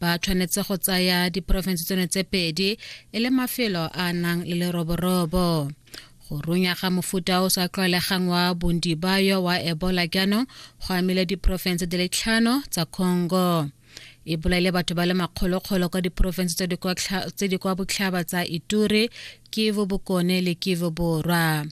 ba tshwanetse go tsaya diporofense tsone tse pedi e le mafelo a nang le leroborobo go runya ga mofuta o sa tlwaelegang wa bondibayo wa ebola jaanong go amile diporofense di le tlhano tsa congo e bolaile batho ba le makgolokgolo kwa diporofense tse di kwa botlhaba tsa ituri Kivu Bokone le Kivu Borwa.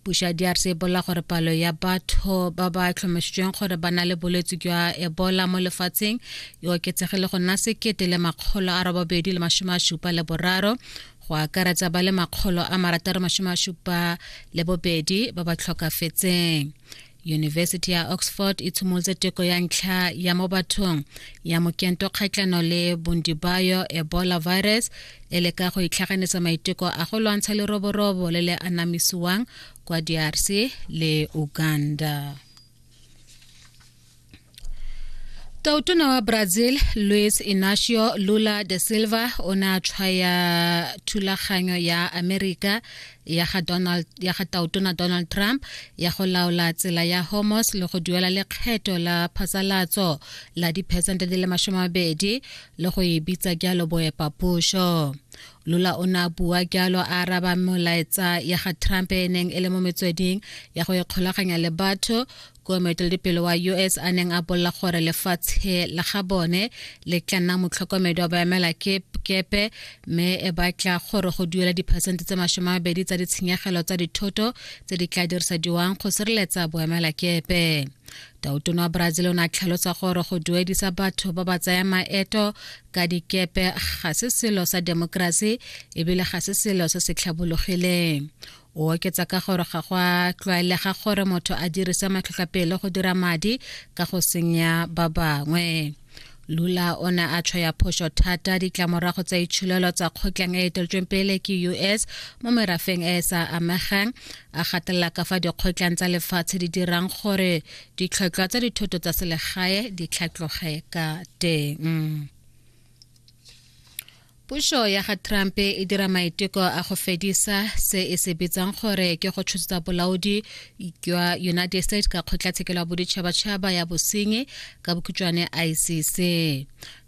Puso ya DRC e bolela gore palo ya batho ba ba tlhomamisitsweng gore ba na le bolwetse jwa Ebola mo lefatsheng e oketsegile go nna sekete le makgolo a robabedi le masome a supa le boraro go akaretsa ba le makgolo a marataro masome a supa le bobedi ba ba tlhokafetseng yunibesithi ya oxford e tshimolotse teko ya ntlha ya mo bathong ya mokento kgatlhano le bondibayo ebola virus e le ka go itlhaganetsa maiteko a go lwantsha leroborobo le le anamisiwang kwa drc le uganda Tautona wa Brazil Luis Inacio Lula da Silva o ne a tshwaya thulaganyo ya Amerika ya ga Donald ya ga Tautona Donald Trump ya go laola tsela ya Hormuz le go duela lekgetho la phasalatso la diphesente di le masome mabedi le go e bitsa jalo boepapušo lula o ne a bua jalo a araba molaetsa ya ga trump e neng e le mo metsweding ya go ikgolaganya le batho ko moeteledipele wa us a neng a bolela gore lefatshe la ga bone le tla nna motlhokomedi wa baemela kepe mme e batla gore go duela diphesente tse masome a mabedi tsa ditshenyegelo tsa dithoto tse di tla dirisediwang go sireletsa boemela kepe tautone wa brazil o ne a tlhalosa gore go duedisa batho ba ba tsaya maeto ka dikepe ga se selo sa demokrasi ebile ga se selo se se tlhabologileng o oketsa ka gore ga go a tlwaelega gore motho a dirise matlhotlhapelo go dira madi ka go senya ba bangwe lula o ne a tshwaya phoso thata ditlamorago tsa itsholelo tsa kgotlang e eteletsweng pele ke us mo merafeng e e sa amegang a gatelela ka fa dikgotlang tsa lefatshe di dirang gore ditlhotlhwa tsa dithoto tsa selegae di tlhatloge ka teng Puso ya ga Trump e dira maiteko a go fedisa se e se bitsang gore ke go tshotsetsa bolaodi jwa United States ka kgotlatshekelo ya boditšhabatšhaba ya bosenyi ka bokhutšwane ICC.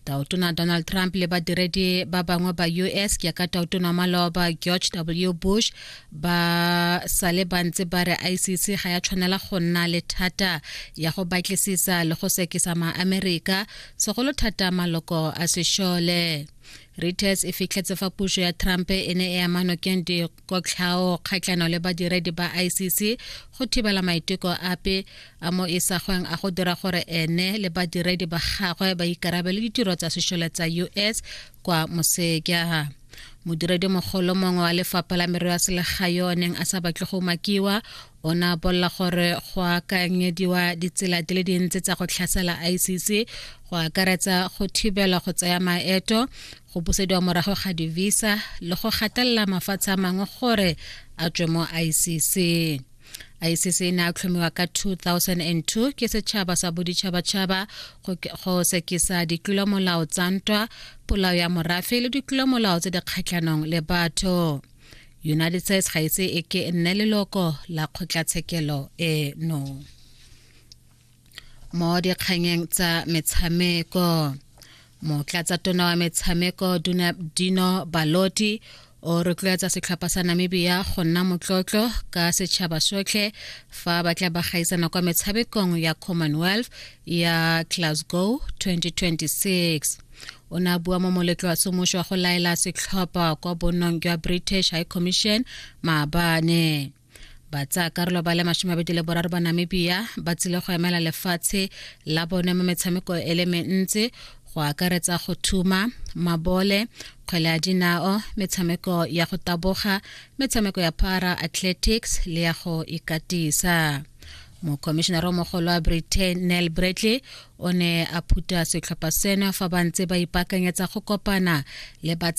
Taotona Donald Trump le badiredi ba bangwe ba US jaaka taotona wa maloba George W Bush ba sale ba ntse ba re ICC ga ya tshwanela go nna le thata ya go batlisisa le go sekisa maamerika segolo thata maloko a sešole reuters e fitlhetse fa puso ya trump e ne e ama nokeng dikotlhao kgatlhano le badiredi ba icc go thibela maiteko ape a mo isagweng a go dira gore ene le badiredi ba gagwe ba ikarabele ditiro tsa sešole tsa us kwa moseja modiredi mogolo mongwe wa lefapha la merero ya selegae yo o neng a sa batle go makiwa O ne a bolela gore go akanyediwa ditsela di le dintsi tsa go tlhasela ICC go akaretsa go thibela go tsaya maeto go busediwa morago ga divisa le go gatelela mafatshe a mangwe gore a tswe mo ICC ICC e ne a tlhomiwa ka 2002 ke setšhaba sa boditšhabatšhaba go sekisa ditlolomolao tsa ntwa polao ya morafe le ditlolomolao tse di kgatlhanong le batho united states ga ise e ke e nne leloko la kgotlatshekelo eno mo dikganyeng tsa metshameko motlatsa tona wa metshameko dino baloti o rotloetsa setlhopha sa namibia go nna motlotlo ka setšhaba sotlhe fa ba tla ba gaisana kwa metshamekong ya commonwealth ya glasgow 2026 o ne a bua mo moletlo wa semuso wa go laela setlhopha kwa bonong jwa british high commission maabane karolo ba le masome abedi le boraro ba namibia ba tsile go emela lefatshe la bone mo metshameko e le mentsi go akaretsa go thuma mabole kgwele ya dinao metshameko ya go taboga metshameko ya para athletics le ya go ikatisa mokomišenara o mogolo wa britain nel bradley o ne a phuta setlhopha seno fa ba ntse ba ipaakanyetsa go kopana le batsa